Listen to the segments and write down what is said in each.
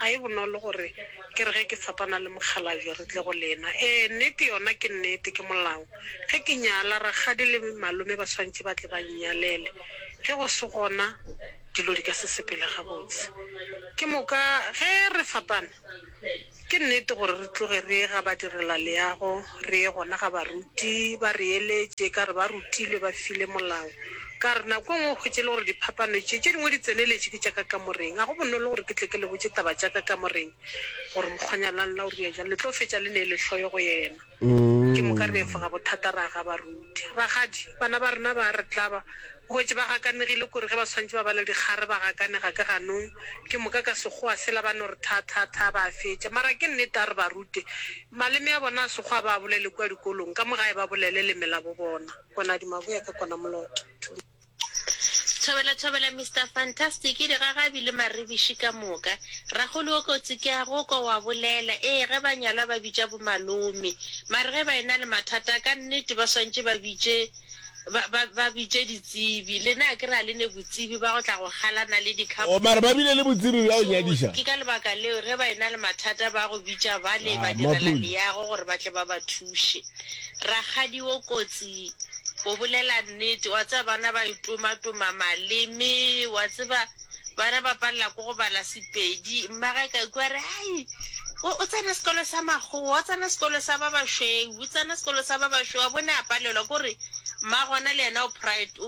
Ga e bonolo gore ke re ge ke tshepana le mokgalabje re tle go lena. Ee, nnete yona ke nnete, ke molao. Ge ke nyala, rakgadi le malome ba swanetše ba tle ba nnyalele. Ge go se gona, dilo di ka se sepele gabotse. Ke moka ge re fapana, ke nnete gore re tloge re ye ga badirelaleago Re ye gona ga baruti, ba re eletše, ka re ba rutilwe, ba file molao. Ka re, Nako e nngwe o hwetše e le gore diphapano tše, tše dingwe di tseneletše ke tša ka kamoreng. Ga go bonolo gore ke tle ke le botše taba tša ka kamoreng, gore mokgwanyana la lena o rile bjang, le tlo fetša le neele hloyo go yena. Ke moka re efoga bothata ra ga baruti. Rakgadi, bana ba rena ba a re tlaba. O hwetše ba gakanegile kore ge ba swantše ba bala dikgare ba gakanega ke ganong. Ke moka ka Sekgowa sela ba no re tha-tha-tha, ba a fetša. Mara ke nnete, a re ba rute. Maleme a bona a Sekgowa ba a bolele kua dikolong, ka mo gae ba bolele leme labo bona. Monadi Maboya ke kona moloto. Thuma. Thobela thobela Mister Fantastic digagabi le maribiši ka moka. Rakgolo wo kotsi ke a go kwa wa bolela ee ge ba nyalwa ba bitša bo malome mare ge ba ena le mathata ka nnete ba swantše ba bitše Ba, ba, ba bitše ditsebi. Lena a ke re a le ne botsebi ba go tla go galana le dikhapo? Oo, mara ba bile le botsebi bja go nyadiša. Ke ka lebaka leo ge ba e-na le mathata ba go bitša bale Ah, badirela maphodi. leago gore ba tle ba ba thuše. Rakgadi o kotsi, o bolela nnete. Wa tseba bana ba itoma-toma maleme, wa tseba. ba re ba palela ko go bala sepedi mmage ka ikwa re ai o tsena sekolo sa makgowa o tsena sekolo sa ba bašweu o tsena sekolo sa ba bašweu a bone a palelwa ko re mma gona le yena o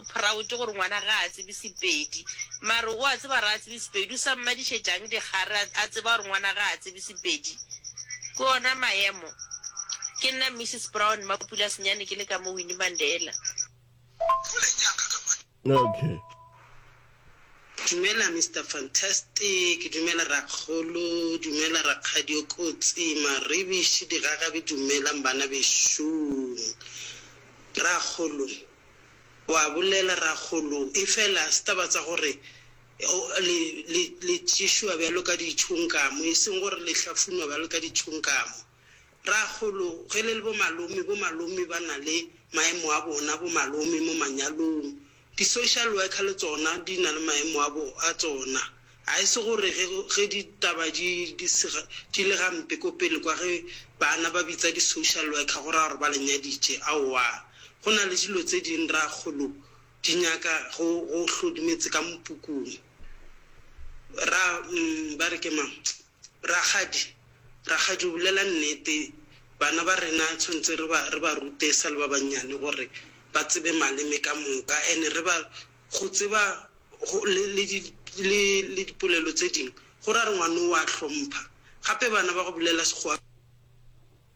proud gore ngwana ga a tsebe sepedi mare o a tseba re a tsebe sepedi o sa mmadišetšang dikgare a tseba gore ngwana ga a tsebe sepedi ke ona maemo ke nna mrs brown mapula senyane ke le ka mo winnie mandela Okay. Dumela Mister Fantastic, dumela Rakgolo, dumela Rakgadi o Kotsi, Maribishi, Digagabi, dumelang bana bešoo. Rakgolo, wa bolela Rakgolo, efela se taba tsa gore le, le, le tšešoa bjalo ka ditšhonkamo, e seng gore le hlafunwa bjalo ka ditšhonkamo. Rakgolo, ge le le bomalome, bomalome ba na le maemo a bona, bomalome mo manyalong. Di-social worker le tsona di na le maemo a bo, a tsona. Ga e se gore ge, ge ditaba di, di se, di le gampe ko pele kwa, ge bana ba bitsa di-social worker go raya gore ba le nyaditše. Aowa. Go na le dilo tse dingwe, Rakgolo, di nyaka go, go hlodimetse ka mopukung. Ra, umm, ba re ke mang? Rakgadi, Rakgadi o bolela nnete, bana ba rena tshwantse re ba re ba rute e sa le ba bannyane gore ba tsebe maleme ka moka and re ba go tseba go le le di le le dipolelo tse dingwe go ra re ngwana o a hlompha gape bana ba go bolela Sekgowa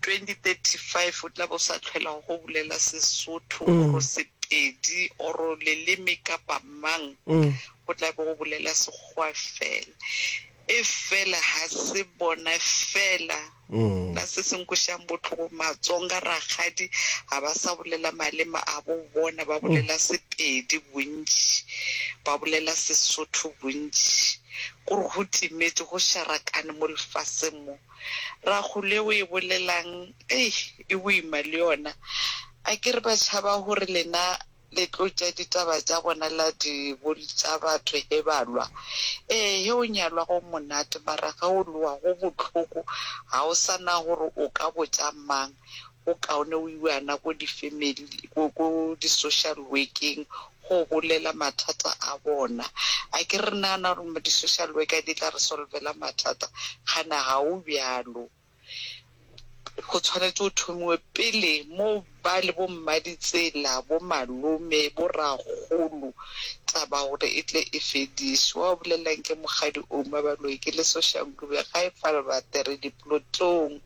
2035 o tla be o sa tlhwelago go bulela Sesotho or Sepedi or leleme kapa mang, go tla be go bulela Sekgowa fela. E fela ga se bona fela ba se se nkwešišang bohloko, Matsonga, Rakgadi ga ba sa bulela maleme a bo bona, ba bulela Sepedi bontši, ba bulela Sesotho bontši. Kore go timetše, go šarakane mo lefaseng mo. Ragole o e bolelang ei e boima le yona akere ba tšhaba gore lena le tlo tša ditaba tša bona la di boltša batho he ba lwa ee he o nyalwa go monate mara ge o lowa go bohloko ga o sa na gore o ka botša mang Go kaone o iwana ko di family ko ko di social work-eng go bolela mathata a bona. A ke re nagana gore di social worker di tla re solvela mathata? Gana ga o bjalo. Go tshwanetse go thomiwe pele mo ba le bo mmaditsela, bo malome, bo ragolo taba gore e tle e fediswe. Wa o bolelelang ke mokgadi Oumabaloi ke le social ga e fa re ba tere diplotlong.